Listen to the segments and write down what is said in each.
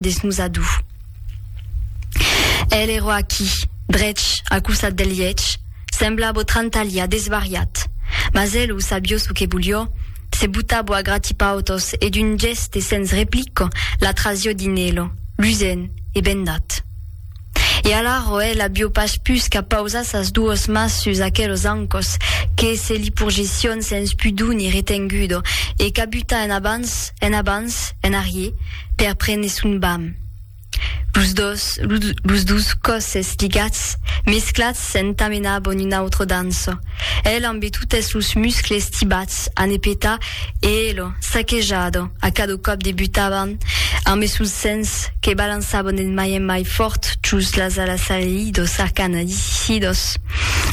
des nos adú. El eró aquí, drech al costat del liech, semblabo trantalha, desvariat. Mas el o sabió ço que volió, se butabo a gratipautos e d'un gèste sens replico la trasió dinelo, lusent e bendat. E alara ò el avió pas pus qu'a pausar sas duos mas sus aquelos ancòs, que se li porgession sens pudor ni retengudo, e qu'a butar en abans, en abans, en arrier, per prene son bam. Los dos, los dos còsses ligats, mesclats, S'entamena bon un autre danço. El ambe totes sos muscles tibats a ne petar e elo, saquejado, a cado còp de butavan ambe sos sens que balançavan en mai en mai fòrt jos las alas salidos arcana disissidos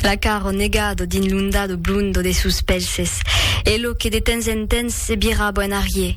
la caro negado dins l'ondado blondo de sos pelses, elo que de temps en temps se viraba en arrier.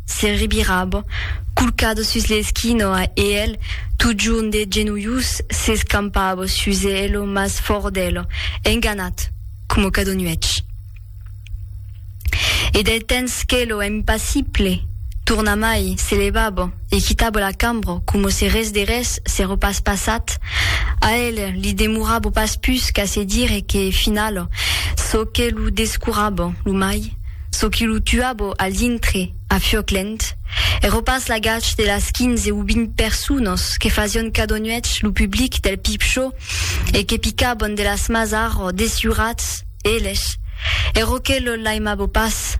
Se rebirava, colcado sus l'esquina a eèl, totjorn de genolhus, s'escampava sus eèl, mas fòrt d'eèl, enganat, coma cada nuèch. E del temps qu'eèl, impassible, tornamai, se levava e quitava la cambra coma se res de res s'èra pas passat, a eèl li demorava pas pus qu'a se dire que, finala, çò que lo descurava lo mai, Çò qui lo tuabo al dintre, a Fioclent, ero pas l'agach de las quinze o vint personas que fasión cada nuech lo public del Pipchò e que picaban de las mas arro desjurats, eles, ero que lo laimabo pas,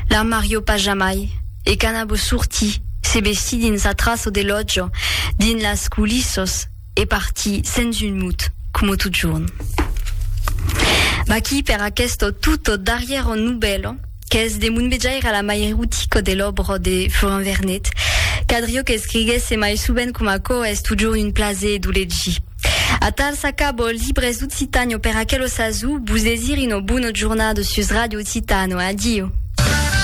l'armario pas jamai, e qu'anabo sortir, se vestir dins a traço de lòtja, dins las coulissas, E parti sens un mot, coma totjorn. Vaquí per aqueste tot darrièr novèl, qu'es de mon vejaire la mai erotica de l'òbra de Florent Vernet. Cadrió qu'escriguèsse mai sovent coma aquò es totjorn un plaser d'o legir. Atal s'acaba Libres d'Occitània per aquel osazo, vos desir una bona jornada sus Radio Occitània. Adio!